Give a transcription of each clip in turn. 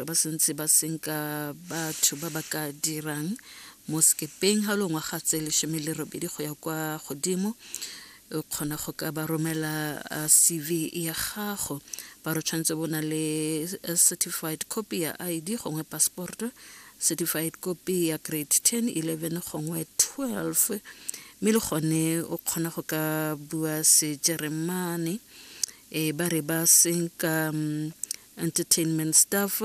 ba santse ba senka batho ba ba ka dirang mo sekepeng ga longwa ga tse lesome le robedi go ya kwa godimo o kgona go ka ba romela uh, cv ya gago ba re tshwanetse bo na le uh, certified copy ya id gongwe passport certified copy ya grade 10 11 gongwe 12 mme le gone o kgona go ka bua sejeremane e ba re ba senka um, entertainment staff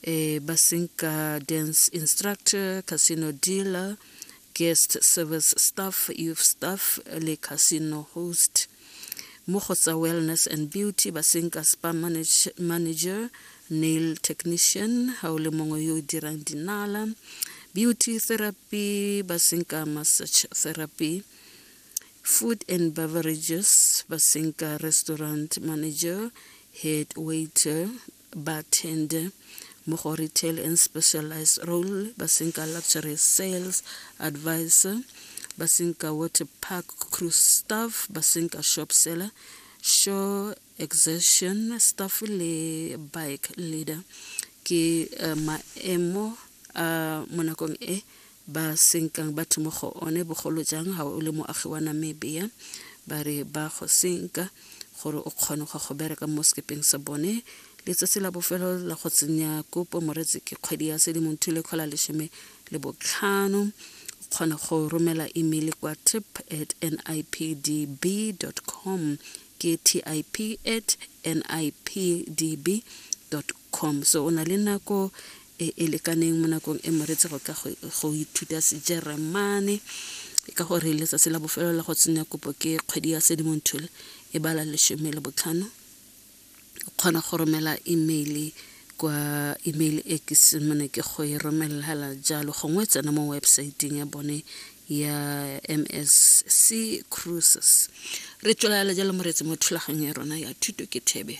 eh, basinka dance instructor casino dealer guest service staff youth staff le casino host mo go tsa wellness and beauty basinka spa manage, manager nail technician ga o le mongwe yo o dirang dinala beauty therapy basinka massage therapy Food and beverages ba senka restaurant manager, head waiter, bartender mo go retail and specialized role ba senka luxury sales advisor ba senka water park crew staff ba senka shop seller show exertion staff le bike leader ke uh, maemo a uh, mo nakong e ba senkang batho mo go one bogolo jang ga o le moagi wa namibia ba re ba go senka gore o kgone go go bereka mo sekepeng sa bone letsatsi la bofelo la go tsenya kopo moretsi ke kgwedi ya sedimonthu le kgola lesome le botlhano o kgona go romela email kwa tip at nipdb com ke tip at nipdb com so o na le nako e e lekaneng mo nakong e moretse go ka go ithuta sejeremane ka gore letsatsi la bofelo la go tsenya kopo ke kgwedi ya sedimonthole e bala lesome le botlhano o kgona go romela email kwa email e ke semone ke go e romelela jalo gongwe tsena mo websaeteng ya bone ya msc cruises re tswelela jalo moretsi mo thulaganyo ya rona ya thuto ke thebe